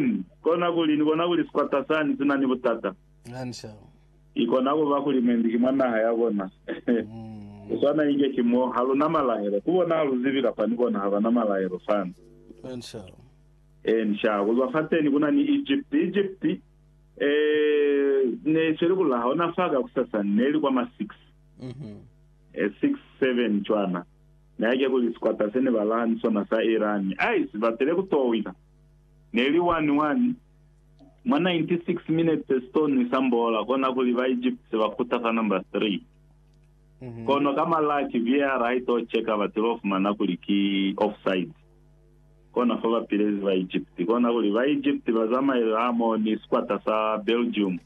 Ni kona kuli, Ni bona kuli sikwata sani si na ni butata. Ki kona kuba kuli mwendi ki mwa naha ya bona. Ku swana inge ki mo. Ha lu na malaelo. Ku bona ha lu zibi kapa ni bona ha ba na malaelo fani. Eeni, sha. Ku zwa fateni ku na ni Egipti. Egipti, ee, ne i sweli ku laha ona fa kakusasani. Ne li kwa ma six. E, six, seven cwana. Ne hake kuli sikwata se ne ba laha ni sona sa Irani. Ai, si batile ku to wina. Neli 1, 1, Mwa 96 minutes stone isambola, kona kuli ba Egypt se ba kuta fa number 3. Kono ka malaki VAR ha ito cheka ba tilo fumana kuli ki offside. Kona fa ba pilezi ba Egypt. Kona kuli ba Egypt ba zamaile hamo ni sikwata sa Belgium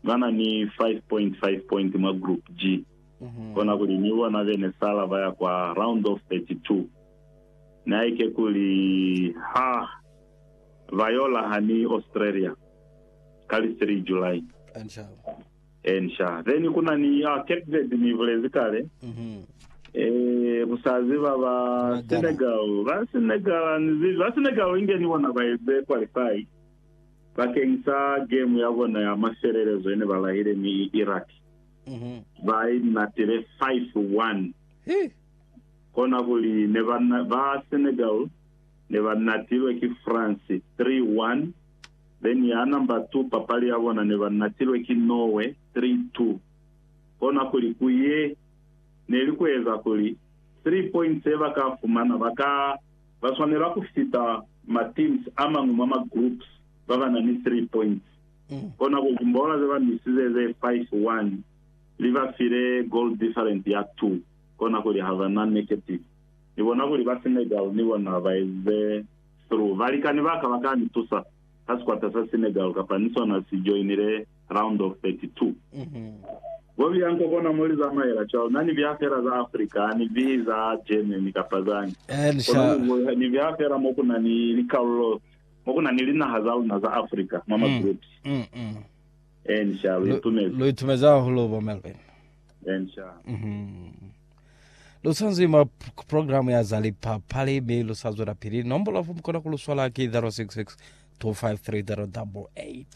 bana ni 5 point 5 point mwa group G. Kona kuli ni bona bene sala baya kwa round of 32. naike kuli ha ba yo laha ni Australia ka li 3 July. Ensha. Then ku na ni ah, Cape Verde ni bulezi kale. Eh, ku sa ziba ba Senegal, ba Senegal, ni zibi ba Senegal inge ni bona ba eze qualify bakeng sa game ya bona ya mafelelezo ene ba lahile ni Iraq. Ba inatile 5-1. kona kuli ne ba ba Senegal ne ba natilwe ki France 3-1 then ya number 2 papali ya bona ne ba natilwe ki Norway 3-2 kona kuli ku ye ne li ku eza kuli 3 points ye ba ka fumana ba ka ba swanela ku fita ma teams a mañwi mwa ma groups ba ba na ni 3 points kona kuli timbola ze ba misize ze 5-1 li ba file goal different ya 2. kona kuli ha ba na negative. Ni bona kuli ba Senegal ni bona ba eze through. Balikani ba ka ba ka ni tusa ha sikwata sa Senegal kapa ni sona si joinile round of 32. Bo Bianco kona mo li zamaela cwalo. Na ni biha fela za Africa, ha ni bihi za Germany kapa zañi. Kono ni biha fela mo ku na ni likalolo, mo ku na ni linaha za luna za Africa mwa ma groups. Ee, ni shalo. Lu itumezi. Lu itumezi hahulu, Bo Melvin. Ensha. Mhm. Lu sanzwi mwa p- k- programu ya za lipapali mi lu sa zwela pili. Nombolo ya fo mu kona ku lu swala ki 066 253 088.